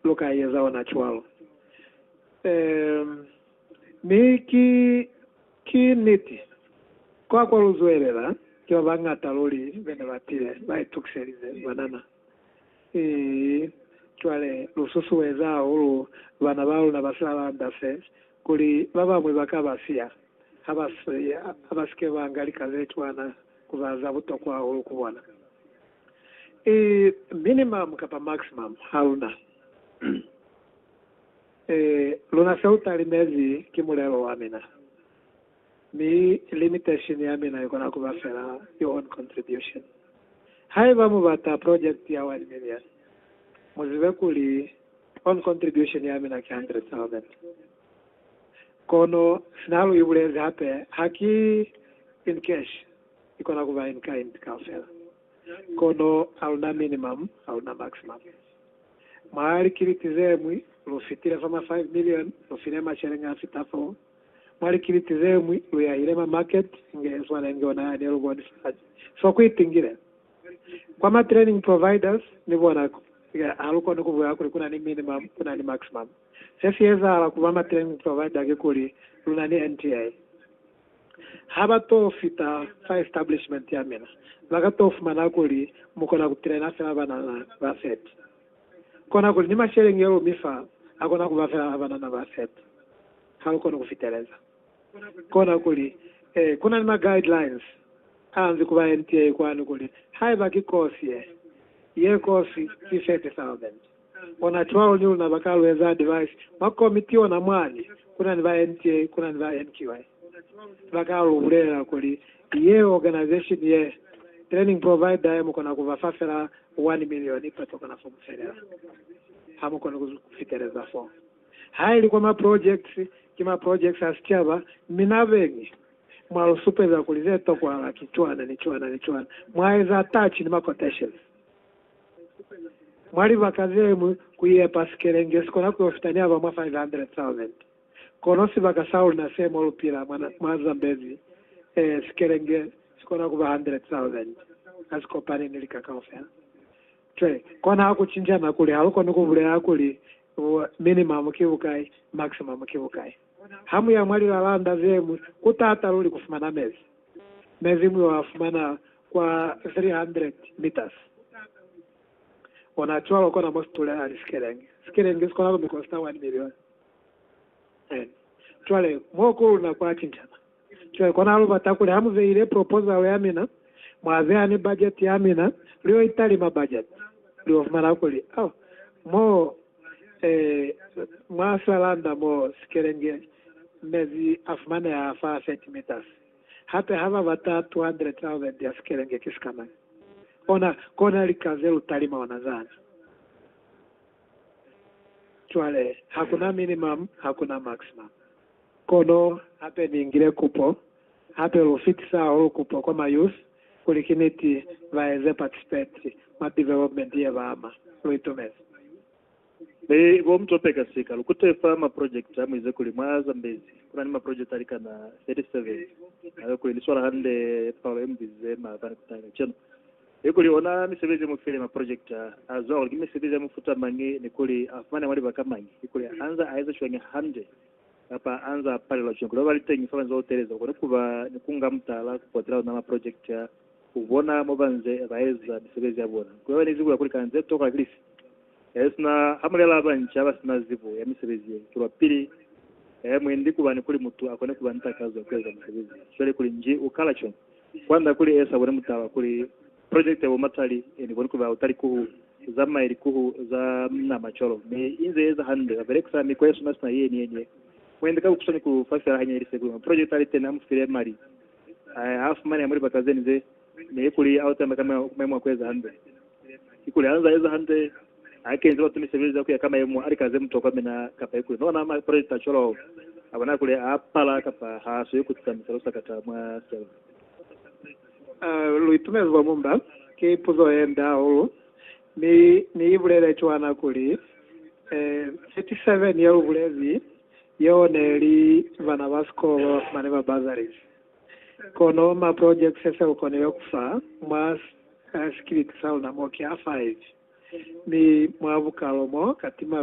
Lu ka eza ona cwalo. Ee, mi ki, ki niti. Kwa, kwa lu zwelela, ki ba bañata luli be ne ba tile, ba itukiselize banana. Ii, cwale, lu susueza hahulu bana ba luna ba silalanda se, kuli ba bañwi ba ka ba siya, ha ba si, ha ba si ke ba nga lika ze cwana, ku ba za butokwa hahulu ku bona. I minimum kapa maximum haluna. I luna seo talimezi ki mulelo wa mina, mi limitation ya mina ikona kuba fela your own contribution. Haiba mubata project ya one million, muzibe kuli own contribution ya mina ki hundred thousand. Kono sina lu ibulezi hape haki in cash. Ikona kuba in kind kaufela, kono aluna minimum, aluna maximum. Mwa likiliti zemwi, lu fitile fa ma five million, lu file macheleñi afita foo. Mwa likiliti zemwi, lu yahile ma market inge yeswana inge ona yane lu boni fa hañi. So ku itingile kwa ma training providers, ni bona ku ha lu koni kubulela kuli kuna ni minimum, kuna ni maximum. Se si ezahala kuba ma training provider kikuli, luna ni NTA. ha ba to fita fa establishment ya mina, ba ka to fumana kuli mu kona ku pilena fela banana ba 30. Kona kuli ni masheleñi yeo mi fa a kona ku ba fela a banana ba 30. Ha lu koni ku fiteleza. Kona kuli, ee, ku na ni ma guidelines a nzi ku ba ye ntiei kwani kuli haiba ki course ye, ye course ki 30,000. Ona cwalo ni luna baka lu eza advise mwa komiti ona mwani kuna ni ba NTA kuna ni ba NQI baka lu bulela kuli yeo organization ye training provider ye mukona ku ba fa fela one million ipa to kona fo mu felela ha mu koni ku fiteleza fo ha ili kwa ma projects ki ma projects a sicaba mi na beñi mwa lu supeza kuli ze tokwahala ki cwana ni cwana ni cwana mwa eza touch ni ma quotations. Mwa libaka ze ñwi, ku yepa sikelenge si kona ku yo fita ni aba mwa 500,000. Kono sibaka sa luna se mo lu pila mwa Zambezi, ee, sikelenge si kona ku ba 100,000. Ha si kopani ni lika kaufela. Cwale, kona ha ku cinca na kuli ha lu koni ku bulela kuli, minimum ki bukai, maximum ki bukai. Ha mu ya mwa lilalanda ze ñwi, ku t'ata luli ku fumana mezi. Mezi mu yo a fumana kwa 300 meters. Ona cwalo kona mo si tulelani sikelenge. Sikelenge si kona ku mi kosta 1 million. Amen. Cwale, mo ku luna kwa cincana. Cwale kona lu bata kuli ha mu beile proposal ya mina, mwa beha ni budget ya mina, lu yo italima budget, lu yo fumana kuli, oh, moo, eh, mwa veranda moo sikelenge mezi a fumaneha fa 30 meters. Hape ha ba bata 200,000 ya sikelenge ki sikamañi? Ona, kona lika ze lu talima ona zani. Cwale, hakuna minimum, hakuna maximum. Kono hape ni ngile kupo hape lu fitisa hahulu kupo kwa ma youth kuli ki niti ba eze participate mwa development ye ba ama. Lu itumezi. Mi bo Mthope kasika lu kute fa ma project a mu ize kuli mwa Zambezi ku na ni ma project a likana 37 a yo kuli li swala hande palo ye mu bizize maabani ku taha kacenu. He kuli ona misebezi mu file maprojekita a zwa kuli ki misebezi ya mufuta mañi ni kuli a fumane mwa libaka mañi ni kuli anza a eza cwañi hande kapa anza a palelwa cwañi kuli babaliteñi fa banze ba uteleza bakone kuba ni kunga mutala kupotela ona maprojekita ku bona mo banze ba eza misebezi ya bona ni kuli bane zibo ya kuli kana ze tokwa ki lifi. He sina hamulela ba banca ba sina zibo ya misebezi ye tolwa pili he mwendi kuba ni kuli mutu akone kuba ni takazo ya kueza misebezi ye, cwale kuli nji u kala cwañi? Kwanda kuli esa bone mutala kuli project ya bo Matali eni boni kuba utali kuhu zamaye likuhu za mna macolo mi inze eza hande ba belekisa mikwa ye suna sina yeni yeni ye muende ka kukuswani ku fa fela hanya ili sekuli ma project ali teni amu file mali a a fumaneha mu libaka zeni ze ne kuli autamba ka maemo a kueza hande Kikuli ha nzaa eza hande, ha kenzi batu misebelezi ya kuya ka mayemo a lika ze mutokwa mi na kapa ikuli no ona maprelita cwalo a bona kuli a pala kapa ha swi ku tisamisa lusakata mwa selo. Lu itumezi bwa mumba. Ki puzo ye nde hahulu, mi Ni i bulele cwana kuli, ee, 37 ye lu bulezi yeo ne li bana ba sikolo ba ba fumani ba bursaries. Kono ma projects a sa lu konile ku fa mwa sikiliti sa luna mo ki a 5, mi mwa bukalo mo ka tima